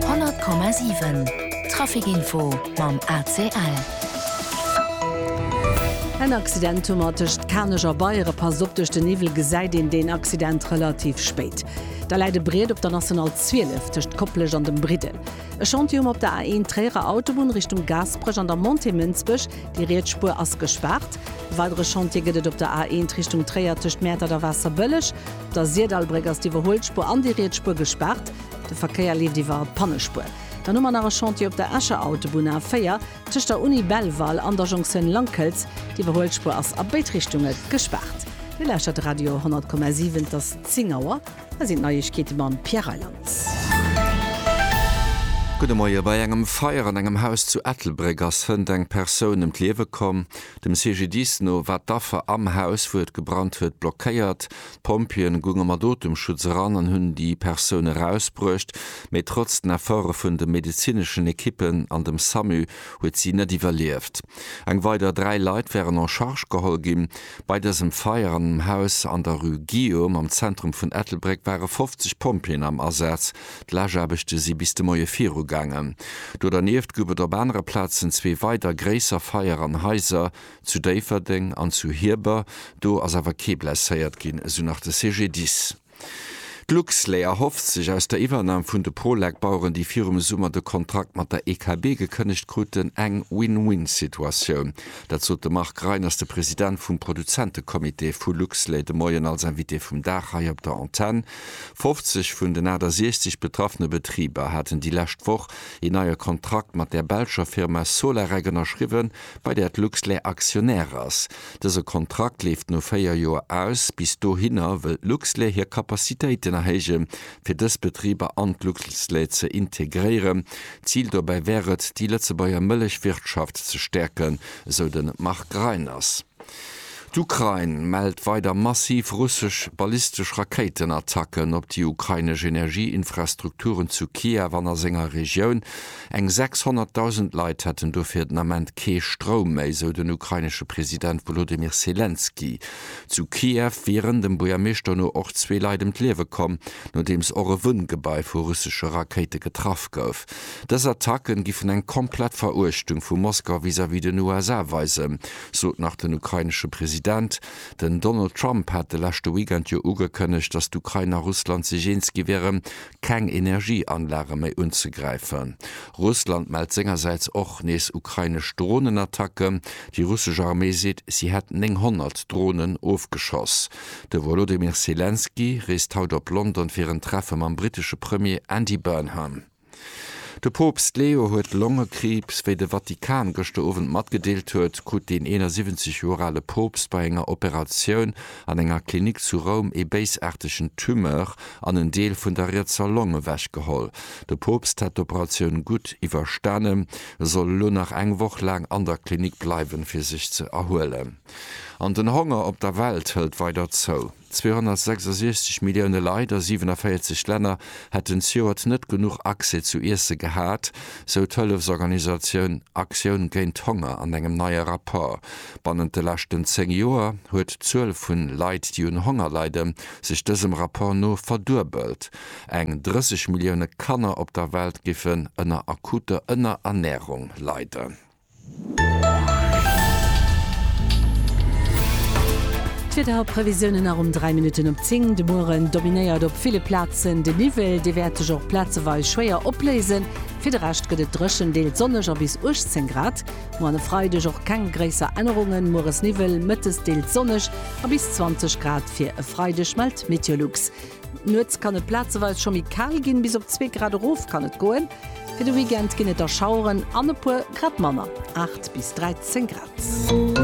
100,7 Trafic Info mam ACL. En Accident hu mer tëscht Kanech a Beiere. Passt op, duerch de Niwwel gesäit een deen Accident relativ spéit. Da läit e Briet op der National 12 tëscht Koplescht an dem Briddel. E Chantier hu mer op der A1 Tréierer Autobunn Richtung Gaasperech an der Montée Mënsbech. Déi riets Spuer ass gespaart. E weidere Chantier gëtt et op der A1 Richtung Tréier tëscht Mäertert a Waasserbëlleg. Der Syrdallbréck ass d'Iwwerhuelspur an déi riets Spur gespaart. De Verkéier leeft iwwer d'Pannespur. Dann hu mer nach e Chantier op der Escher Autobunn A 4, tëscht der Uni Belval an der Jonktioun Langkëlz. D'Iwwerhuelspur ass a béid Richtunge gespaart. Dir lauschtert Radio 100,7. Et ass 10 Auer. Hei sinn d'Neiegkeete mam Pierre Reyland. Gudde Moie. Bei engem Feier an engem Haus zu Ettelbréck ass hënt eng Persoun ëm d'Liewe komm. Dem CGDIS no war d'Affer am Haus, wou et gebrannt huet, blockéiert. D'Pompjeeën gounge mat Otemschutz eran an hunn déi Persoun erausbruecht, mee trotz den Efforte vun de medezineschen Ekippen an dem Samu huet si net iwwerlieft. Eng weider dräi Leit wären en charge geholl ginn. Bei dësem Feier an engem Haus an der Rue Guillaume am Zentrum vun Ettelbréck ware 50 Pompjeeën am Asaz, D'Lageaarbechte si bis de Moie viru gaangen. Do dernieft gouf et op anere Plazen zwee weider gréisser Feier an Haiser, zu Déifferdeng an zu Hierber. Do ass awer kee blesséiert ginn, esou nach de CGDIS. D'Luxlait erhofft sech aus der Iwwernam vun de Prolek-Baueren, déi virum Summer de Kontrakt mat der EKB gekënnegt kruten, eng Win-Win-Situatioun. Dat sot de Marc Reiners, de President vum Produzentecomité vu Luxlait, de Moien als Invité vum Dag hei op der Antenn. 50 vun den 68 betraffene Betriber haten déi lescht Woch een neie Kontrakt mat der belscher Firma Solarec ënnerschriwwen, bei där d'Luxlait Aktionär ass. Dëse Kontrakt leeft no véier Joer aus. Bis dohinner wëll d'Luxlait hir Capacitéiten erhéije fir dës Betriber an d'Luxlait ze integréieren. Zil dobäi wär et, déi Lëtzebuerger Mëllechwirtschaft ze stäerken, esou de Marc Reiners. D'Ukrain mellt weider massiv russesch ballistesch Rakéitenattacken op déi ukrainesch Energieinfrastrukturen zu Kiew an a senger Regioun. Eng 600.000 Leit hätten dofir den Ament kee Stroum méi, sou den ukrainesche President Wolodymyr Selenskyj. Zu Kiew wieren dem Buergermeeschter no och zwee Leit ëm d'Liewe komm, nodeems och e Wunngebai vu russesche Rakéite getraff gouf. Dës Attacke giffen eng komplett Veruechtung vu Moskau vis-à-vis den USA weisen, sot nach den ukrainesche President. Den Donald Trump hat de leschte Weekend jo ugekënnegt, datt d'Ukrain a Russland sech eens gi wieren, keng Energieanlage méi unzegräifen. Russland mellt sengersäits och nees ukrainesch Dronenattacken. Déi russesch Arméi seet, si hätt 900 Dronen ofgeschoss. De Wolodymyr Selenskyj reest haut op London fir en Treffe mam brittesche Premier Andy Burnham. De Poopst Leo huet Longekriibs. Wéi de Vatikan gëschter Owend matgedeelt huet, krut deen 71 Joer ale Poopst bei enger Operatioun an enger Klinik zu Roum ee béisaartegen Tumeur an en Deel vun der rietser Long ewechgeholl. De Poopst hätt d'Operatioun gutt iwwerstanen, soll elo nach eng Woch laang an der Klinik bleiwen, fir sech ze erhuelen. An den Honger op der Welt hëlt weider zou. 266 Millioune Leit a 47 Länner hätten zejoert net genuch Accès zu Iesse gehat, sou d'Hëllefsorganisatioun Aktioun géint Honger an engem neie Rapport. Bannent de leschten 10 Joer huet d'Zuel vu Leit, déi un Honger leide sech dësem Rapport no verduebelt. Eng 30 Millioune Kanner op der Welt giffen ënner akuter Ënnerernärung leiden. D'Wiederprevisiounen nach um 3 Minutten op 10. De Mueren dominéiert op ville Plazen de Niwwel, dee wäert sech och plazeweis schwéier opléisen. Fir de Rescht gëtt et dréchen, deels sonneg a bis 18 Grad. Moarn e Freideg och keng gréisser Ännerungen, mueres Niwwel, mëttes deels sonneg a bis 20 Grad fir e Freideg, mellt Meteolux. Nuets kann et plazeweis scho méi kal ginn, bis op zwee Grad erof kann et goen. Fir de Weekend ginn et der Schaueren an e puer grad manner, 8 bis 13 Grad.